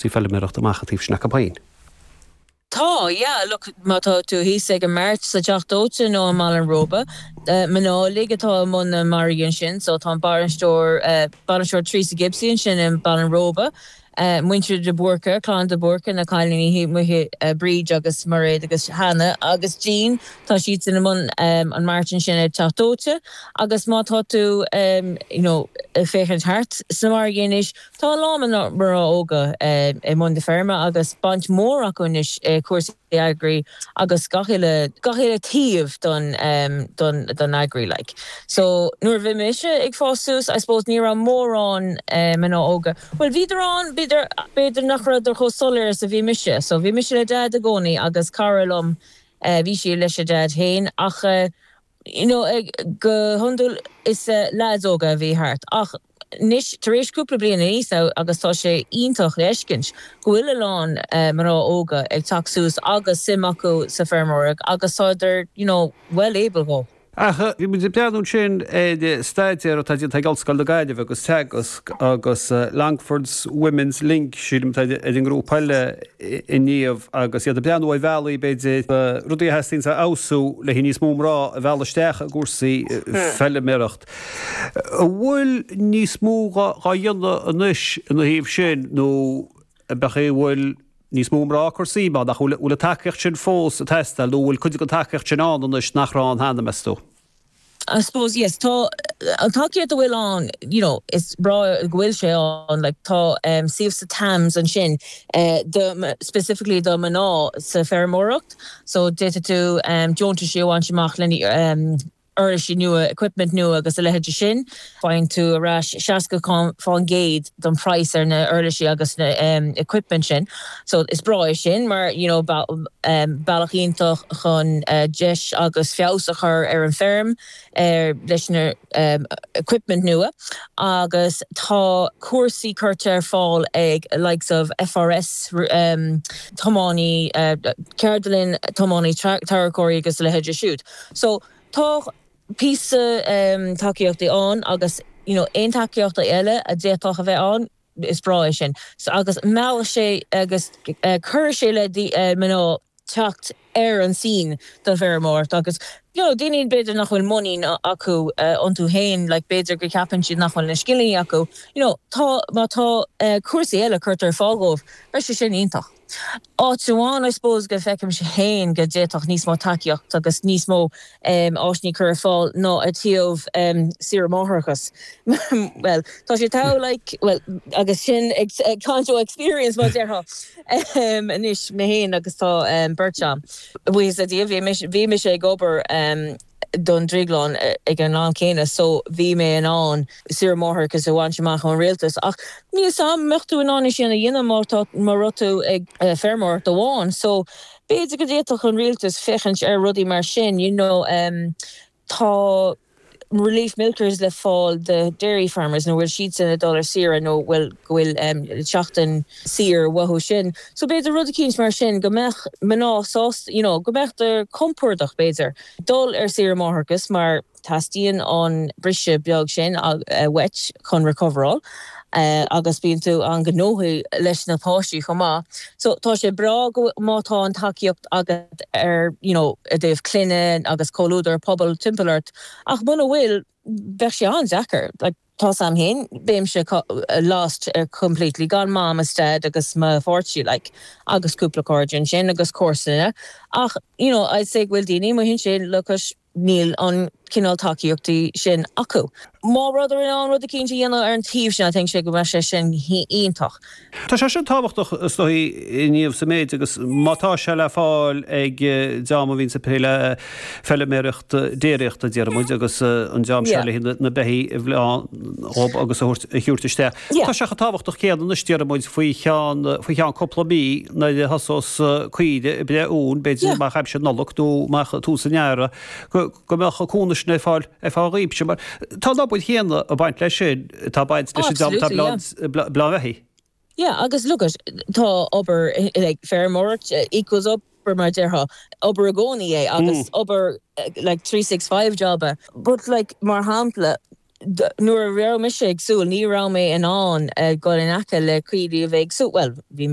sí ag feiliméireacht amach ó thaobh snáth an phain. Tá, yeah, look, má tá tú thíos ag an mart sa Teach Dóite nó i mBaile an Róba, mná uilig atá i mbun na margaí ansin, so tá an bainisteoir, bainisteoir Theresa Gibsey ansin i mBaile an Róba, muintir de Búrca, clann de Búrca, na cailíní thíos amuigh, Bríd agus Mairéad agus Hannah agus Jean, tá siadsan i mbun an mairt ansin ag Teach Dóite agus má tá tú, you know, ag féachaint thart sna margaí anois, Tá a lán mná óga i mbun na feirme agus baint mhór acu anois i gcúrsaí agri agus gach uile gach uile taobh don don don agri like so nuair a bhí mise ag fás suas I suppose ní raibh mórán mná óga bhuel bhíodar ann ach b'fhéidir nach raibheadar chomh soiléir is a bhí mise so bhí mise le Dad i gcónaí agus cara liom bhí sí lena Dad féin ach you know go hiondúil is leaids óga a bhí thart ach anois tar éis cúpla bliain aníos now agus tá sé iontach le fheiscint go bhfuil a lán mná óga ag teacht suas agus suim acu sa feirmeoireacht agus tádar you know well able go Ach bhí muid ag breathnú ansin ar staidéar atá déanta ag Ollscoil na Gaillimhe agus Teagasc agus Longford Women's Link sílim atá ar an ngrúpa eile inniu agus iad ag breathnú ar bhealaí, b'fhéidir, na rudaí a theastaíonn a fheabhsú le níos mó mná a mhealladh isteach i gcúrsaí feiliméaracht. An bhfuil níos mó dhá dhéanamh anois ina thaobh sin nó an meas tú an bhfuil níos mó mná ag cur suim ann? Nó an bhfuil an tacaíocht sin fós ag teastáil nó an bhfuil cuid den tacaíocht sin ann anois nach raibh ann cheana, meas tú? I suppose yes, tá an tacaíocht a bhfuil ann you know is breá go bhfuil sé ann like tá em scheme sa Tams ansin eh do specifically do mná sa feirmeoireacht so d'fhéadfadh tú em deontaisí a bhaint amach lena em uirlisí nua, equipment nua agus a leithéidí sin. faigheann tú ar ais 60% den price ar na uirlisí agus na equipment sin so is breá é sin mar you know bealach iontach chun deis agus feabhas a chur ar an feirm ar leis na equipment nua agus tá cúrsaí curtha ar fáil ag likes of FRS tiománaí ceardlann tiománaí tarracóirí agus a leithéidí siúd so tá píosa tacaíochtaí ann agus you know aon tacaíochtaí eile a d'fhéadfadh a bheith ann is breá é sin so agus mheallfadh sé agus chuirfeadh sé le mná teacht ar an scene do feirmeoireacht agus you know daoine b'fhéidir nach bhfuil muinín acu iontu féin like b'fhéidir go ceapann siad nach bhfuil na scileanna acu you know tá má tá cúrsaí eile curtha ar fáil dhóibh beidh sé sin iontach. Áit amháin I suppose go bhfeicimse féin go d'fhéadfadh níos mó tacaíocht agus níos mó áiseanna cur ar fáil ná i dtaobh saoire máithreachas bhuel tá sé tough like bhuel agus sin ag caint ó experience mar a déarfá anois mé féin agus tá beirt agam buíochas le Dia bhí mise ag obair don drioglann ag an am céanna so bhí mé in ann saoire máithreachais a bhaint amach ón rialtas ach níl a fhios agam an mbeadh tú in ann é sin a dhéanamh má tá má raibh tú ag feirmeoireacht amháin so b'fhéidir go d'fhéadfadh an rialtas féachaint ar rudaí mar sin you know tá relief milkers le fáil do dairy farmers nuair a bhfuil siadsan ag dul ar saoire nó bhfuil go bhfuil seachtain Saor, maith dóibh sin, so b'fhéidir rud eicínt mar sin go mbeadh mná sásta, you know, go mbeadh tú compordach b'fhéidir dul ar saoire máithreachas mar teastaíonn an briseadh beag sin uait chun recoveráil agus bíonn tú an-gnóthaí leis na páistí chomh maith so tá sé breá go, má tá an tacaíocht agat ar, you know, i dtaobh clainne agus comhluadar, pobal timpeall ort ach muna bhfuil, bheadh sé an-deacair, like. Tá a fhios agam féin, bheinnse lost completely, gan mom is dad agus mo pháirtí like agus cúpla cairde ansin agus comharsana ach you know I'd say go bhfuil daoine amuigh ansin like agus níl an cineál tacaíochtaí sin acu. Má rabhthar in ann rud eicínt a dhéanamh ar an taobh sin I think go mbeadh sé sin iontach. Tá sé sin tábhachtach is dóigh i ndáiríre sa méid agus má tá sé le fáil ag dream a bhíonn ag plé le feilméaracht déiríochta déarfaimid agus an dream seo leis na beithígh a bhleán dhóib agus a thiúirt isteach tá sé chomh tábhachtach céanna anois déarfaimid faoi cheann faoi cheann cúpla mí nuair a thosós caoirigh ag breith uain b'fhéidir amach aimsir Nollag nó amach tús an Earrach go go mbeadh cúnamh sin ar fáil ar feadh achaimse mar tá an obair chéanna ag baint leis sin atá ag baint leis an job atá ag bleán beithígh. Yeah agus look it tá obair like feirmeoireacht equals obair mar a déarfá obair i gcónaí é agus obair like three six five job é but like mar shampla nuair a raibh mise ag súil ní raibh mé in ann dul in aice le caoirigh a bhí ag súil bhuel bhí